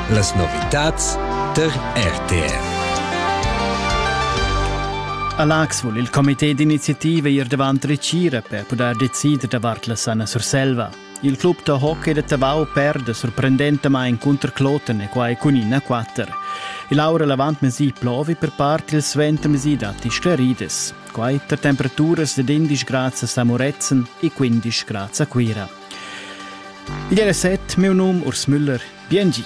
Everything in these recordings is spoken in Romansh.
Las novitads tar RTR. A Lax vul il comité d'iniziativa ir davant Recira per pudair decider davart la sana Surselva. Il club da hockey da Tavau perde sorprendentamain cunter Kloten e quai cun ina 4. Il aura l'avantmesi plovi per part il suentermesi datti sclaridas. Quai tar temperaturas da 11 grads a Samuretzen e 15 grads a Cuira. Igl era set, miu num Urs Müller. Biengi.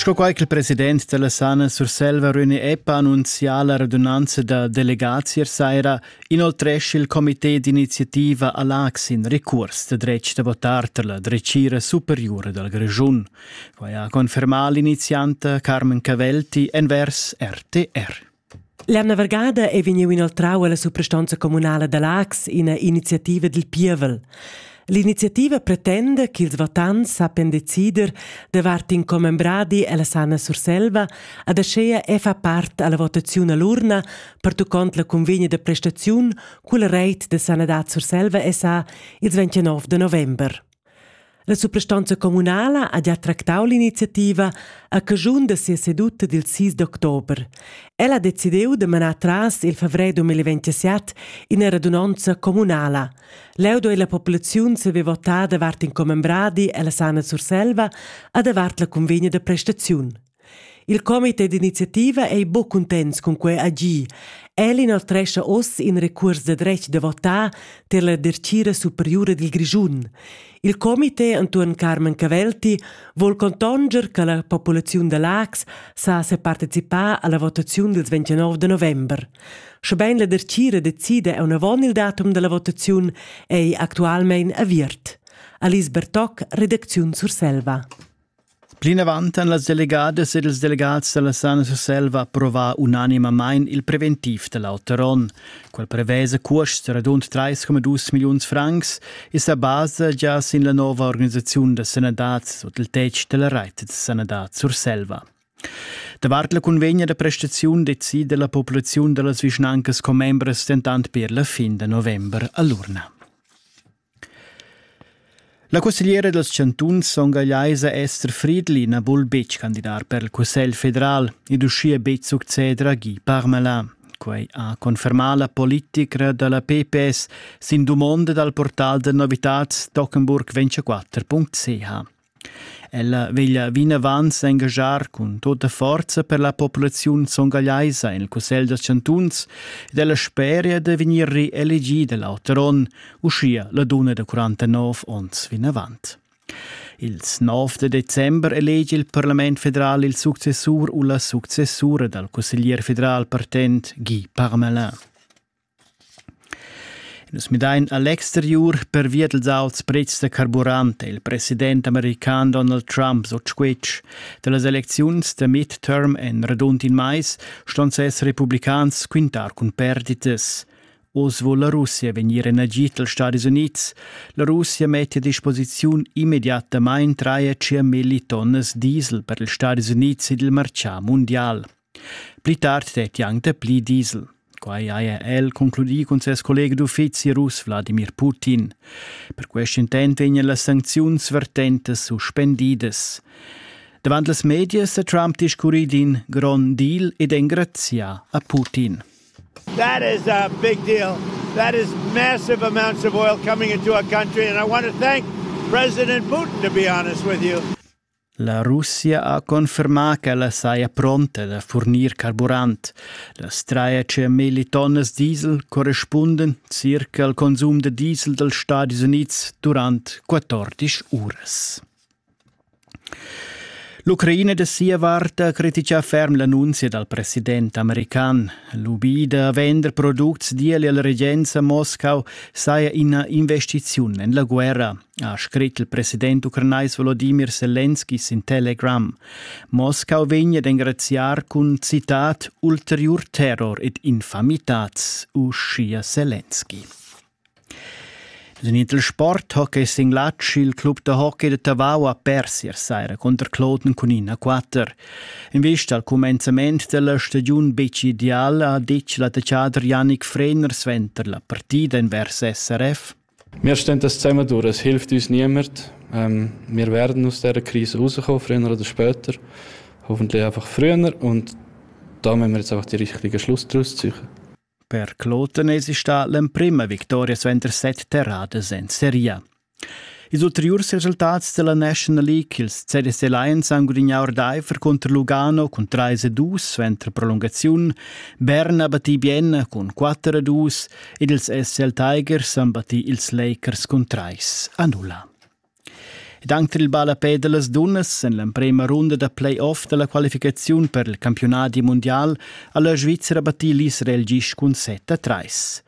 Sco quai che il president della Sana Surselva Röni Eppa annunzià la radunanza da delegazier saira, inoltresce il comité d'iniziativa all'Ax in recurs de dretg da votar per la drecira superiore dal Grischun. Quai ha confermà l'inizianta Carmen Cavelti envers RTR. La navargada ei vegniu inoltrau alla suprastonza communala da Laax ina iniziativa dil pievel. L'iniziativa pretenda ch'ils votants sappian decider davart in commembradi ella Sana Surselva ad aschia e fa part alla votaziun all'urna pertuccont la convegna da prestaziun culla reit da sanadad Surselva SA ils 29 de november. La suprastanza communala ha gia tractau l'iniziativa a caschun da sia seduta dil 6 d'october. Ella ha decidiu da manar tras il favrer 2027 ina radunonza communala. Leu doi la populaziun saver votar davart in commembradi ella Sana Surselva a davart la convegna da prestaziun. Il comité d'iniziativa ei buc cuntents cun quei agir. El inoltrescha oz in recuors da dretg da votar tier la dertgira superiura dil Grischun. Il comité entuorn Carmen Cavelti vul contonger che la populaziun da Lax sa separticipar alla votaziun dils 29 de november. Schebein la dertgira decida aunavon il datum dalla votaziun ei actualmein aviert. Alice Bertoc, redacziun Surselva. Plinavant han las delegadas ed ils delegats da la Sana Surselva approvà unanimamain il preventiv da l'auter onn. Quel prevesa cuosts radund 3,2 milliuns francs e sa basa gia sin la nova organisaziun da sanadad sut il tetg da la reit da sanadad Surselva. Davart la cunvegna da prestaziun decida la populaziun da las vischnancas commembras dentant per la fin da november a l'urna. La cussegliera dals chantuns songagliaisa Esther Friedli na vul betg candidar per il Cussegl federal ed uschia betg succeder a Guy Parmelin. Quai ha confermà la politicra da la PPS sin dumonda dal portal da novitads Tockenburg24.ch. Ella veglia vinavant s'engaschar cun tota forza per la populaziun songagliaisa en il cussegl dals chantuns ed ella speria da vegnir reelegida l'auter onn, uschia la dunna da 49 onns vinavant. Ils 9 da december elegi il parlament federal il successur u la successura dal cusseglier federal partent Guy Parmelin. Nus midain a l'exteriur pervia dals auts pretschs da carburant è il president american Donald Trump sut squitsch. Da las elecziuns da midterm en radund in mais ston ses republicans quintar cun perditas. Oz vul la Russia vegnir en agid dals Stadis Unids. La Russia mette a disposiziun immediatamain 3,5 millitonnes diesel per ils Stadis Unids ed il martgà mundial. Pli tard stetti anc dapli diesel. Quai haja el concludì cun ses collega d'uffizi russ Wladimir Putin. Per quest intent vegnan las sancziuns vertentas suspendidas. Davant las medias sa Trump discurri d'in grond deal ed engrazià a Putin. That is a big deal. That is massive amounts of oil coming into our country and I want to thank President Putin to be honest with you. La Russia ha confermà ch'ella saja pronta da furnir carburant. Las trais milli tonnas diesel correspundan circa al consum da diesel dals Stadis Unids durant 14 uras. L'Ucraina da sia vart ha criticà ferm l'annunzia dal president american. Lubì da vender products d'ieli alla regenza a Moscau saja ina investiziun en la guerra. ha scrit il president ucranais Volodimir Selenski sin Telegram. Moscau vegn ad engraziar cun citat ulteriur terror ed infamitats, uschia Selenski. Den Intersport Hockey Singlatsch, il club da hockey de Tavau a Persia saira contro Kloten cun 1-4. In vista al commenzament della stagiun bec ideal ha detg l'attaccader Yannick Frener suenter la partida invers SRF. Mir stentas zusammenduras hilft uns niemand. Ähm, wir werden aus dieser Krise rauskommen, früher oder später. Hoffentlich einfach früher und da müssen wir jetzt einfach die richtigen Schluss daraus ziehen. Per Klotenesisch sta l'emprima vittoria svender set terradas en Serie. Ils ulteriurs resultats della National League, ils CDS Alliance han gudignà ordaifer contro Lugano cun 3-2 suenter prolungaziun, Bern ha battì bien cun 4-2, ed ils SL Tigers han battì ils Lakers cun trais a nulla. Ed anc tar il ballapè da las dunnas en l'emprema runda da play-off da la qualificaziun per il campiunadi mundial ha la Svizzera battì l'Israel gist cun set a trais.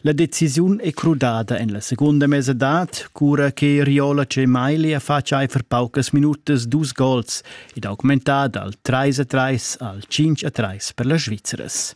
La decisiun è crudada en la segunda mesadad, cura che Riola Cemaili ha fatg aifer paucas minutas dus gols ed augmentada al 3 a 3 al 5 a 3 per las Svizzeras.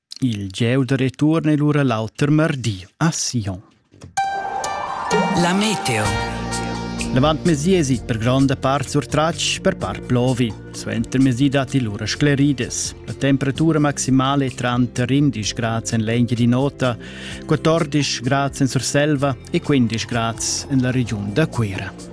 Il gieu da return è lura l'auter mardi a Sion. La meteo. L'avantmesi esit per gronda part surtratg per par plovi. Suentermesi datti lura sclerides. La temperatura maximale è tranter 11 grad en l'Engia di Nota, 14 grad en Surselva e 15 grad en la regiun da Cuira.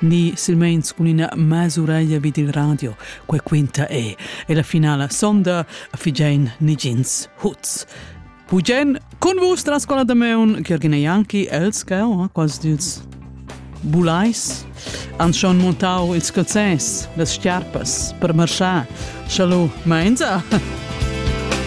ni silmeins cun ina mas'ureglia vid il radio. Quei quinta e. E la finala sonda figein nigins huts. Pugen cun vus dalla scola da Meun, Ghergin e Janki, els che oh, quasi dils bulais, han schon montau ils calzès, las schiarpas per marschar. Chalu, meinza?